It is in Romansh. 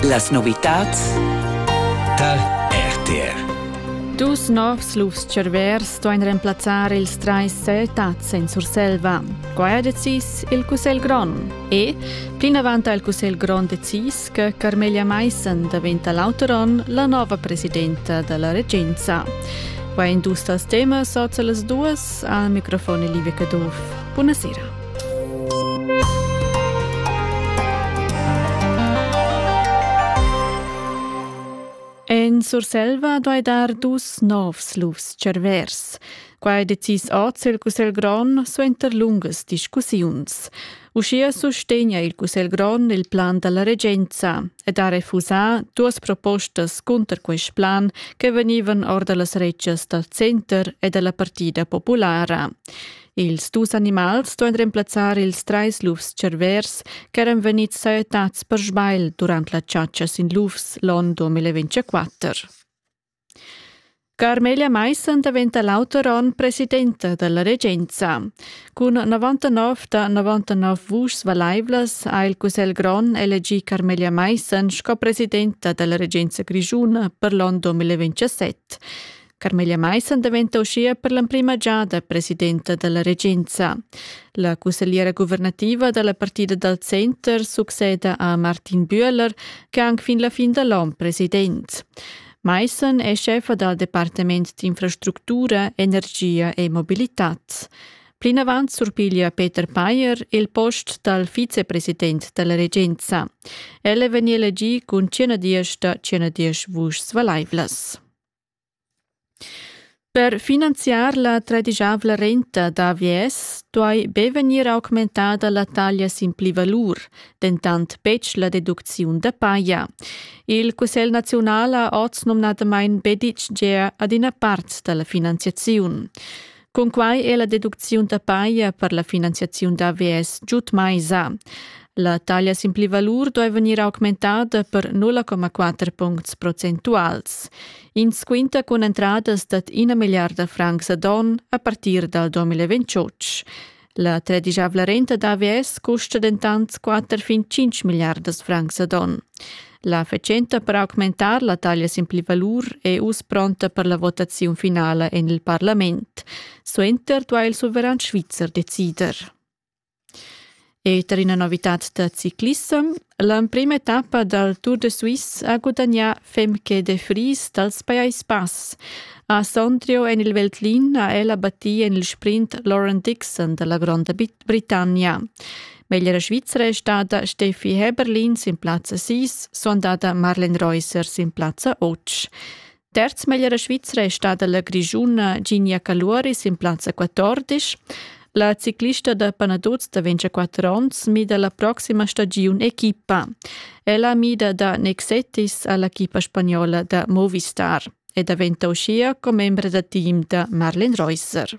Las novitads tar RTR. Dus novs lufs-tscharvers stoin remplazzar ils trais setats en Surselva. Quai ha decis il Cussegl grond. E plinavant ha il Cussegl grond decis che Carmelia Meissen daventa l'auteron la nova presidenta dalla regenza. Quai in dus tals temas soz las duas al microfon Livia Caduff. Buonasera. En Surselva duai dar dus novs lufs cervers. Quai decis oz il Cussegl grond suenter lungas discussiuns. Uschia sustegna il Cussegl grond il plan da la regenza ed ha refusà duas propostas cunter quest plan che vegnivan or da las retschas dal center e da la Partida populara. Ils dus animals ston remplazzar ils trais lufs cervers ch'eran vegnids sajettads per sbagl durant la chatscha sin lufs l'onn 2024. Carmelia Meissen daventa l'auter onn presidenta dalla regenza. Cun 99 da 99 vuschs valaivlas ha il Cussegl grond elegì Carmelia Meissen sco presidenta dalla regenza grischuna per l'onn 2027. Carmela Maissen daventa uschia per l'emprima giada presidenta dalla regenza. La cussegliera guvernativa dalla partida dal center succeda a Martin Bühler, che ha anc fin la fin da l'on president. Maissen è chefa dal Departament d'infrastructura, energia e mobilitad. Plinavant surpiglia Peter Payer il post dal vicepresident dalla regenza. El è vegni elegì cun 110 da 110 vuschs valaivlas. Per finanziar la tradischavla renta da AVS duai be vegnir augmentada la taglia sin plivalur, dentant betg la deducziun da paja. Il Cussegl naziunal ha oz numnadamain be ditg gea ad ina part da la finanziaziun. Cunquai è la deducziun da paja per la finanziaziun d'AVS giud mai sa. La taglia sin plivalur doi vegnir augmentada per 0,4 puncts procentuals. Ins quinta cun entradas dad ina milliarda francs ad on a partir dal 2028. La tradigiavla renta d'AVS custa dentant 4 fin 5 milliardas francs ad on. La fatschenta per augmentar la taglia sin pli valur è uss pronta per la votaziun finala en il parlament. Suenter duai il suveran svizzer decider. E per ina novità da ciclissem, L'emprima etappa dal Tour de Suisse ha gudagnà Femke de Vries dals Pajais Bass. A Sondrio en il Veltlin ha ella battì en il sprint Lauren Dixon da la Gronda Britannia. Meglra Svizra è stata Steffi Heberlin sin plazza 6, sondata Marlen Reusser sin plazza 8. Terz meglra Svizra è stada la grischuna Ginia Caluori sin plazza 14. La ciclista da Panaduz da 24 onns mida la proxima stagiun equipa. Ella mida da Nexetis all'equipa spagnola da Movistar e daventa uschia commembra da team da Marlin Reusser.